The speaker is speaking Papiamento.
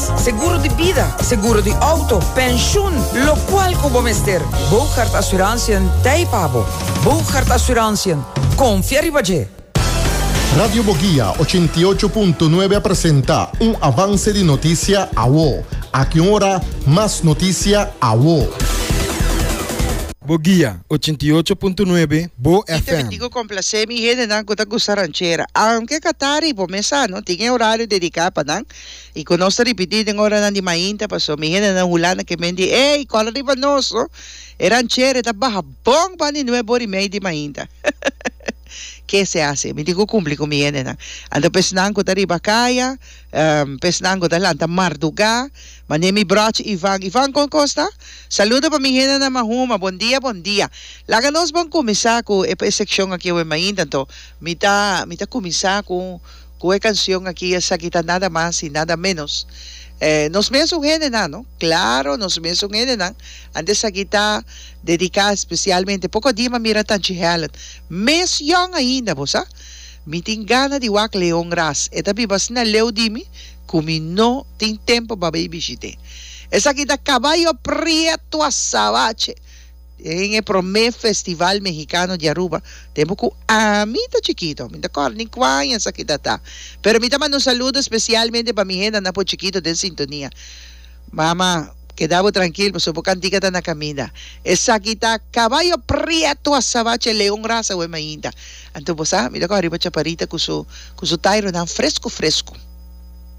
Seguro di bida, seguro di outo, penshun, lokual ku bo mester, Bougaard Assurantiën t'ei pa bo. Bougaard Assurantiën, konfia riba dje! Radio Bogia ochenta i ocho punto nuebe a presenta un avanse di notisia awo. Aki un ora mas notisia awo. Bogia ochenta i ocho punto nuebe, Bo Mi ta FM. dico complacé mi hendenan cu ta gusta ranchera. Aunque catari bo mesa no tin e horario dedica pa nan. I cu nos ta ripiti den oranan di mainta, pasobra mi hendenan den Hulanda ke men di, Ey, cora riba nos, no? E ranchera e ta baha bon pan di nueb ora y mei di mainta. Ke se haci? Mi tin cu cumpli cu mi hendenan. Anto pesnan cu ta riba caya, pesnan cu ta lanta marduga, mane mi brochi Ivan, Ivan, con cos ta? Saluda pa mi hendenan mahuma, bon dia, bon dia. Laga nos bon cuminsa cu e seccion aki awe mainta. Anto mi ta, mi ta cuminsa cu. Cu e cancion aki esaki ta nada mas y nada menos nos mesun hendenan no, claro nos mesun hendenan, antes esaki ta dedica especialmente poco di m'a mira Tanchi Helen mes yong ainda bo sa mi tin gana di wak Leon ras e ta biba asina leu di mi cu mi no tin tempo pa bay bishit'e esaki ta caballo prieto azabache Den e promé Festival Mehikano di Aruba, tempu ku ami ta chikitu, mi no ta kòrda ni kua aña esaki ta ta, pero mi ta manda un saludo spesialmente pa mi hendanan por chikitu den sintonia. Mama, keda bo trankil pasobra bo kantika ta na kaminda. Esaki ta kabayo prietu asabache leon rasa wèm ainda. Anto bo sa, mi ta kòrda riba Chaparita ku su ku su taironan fresku fresku.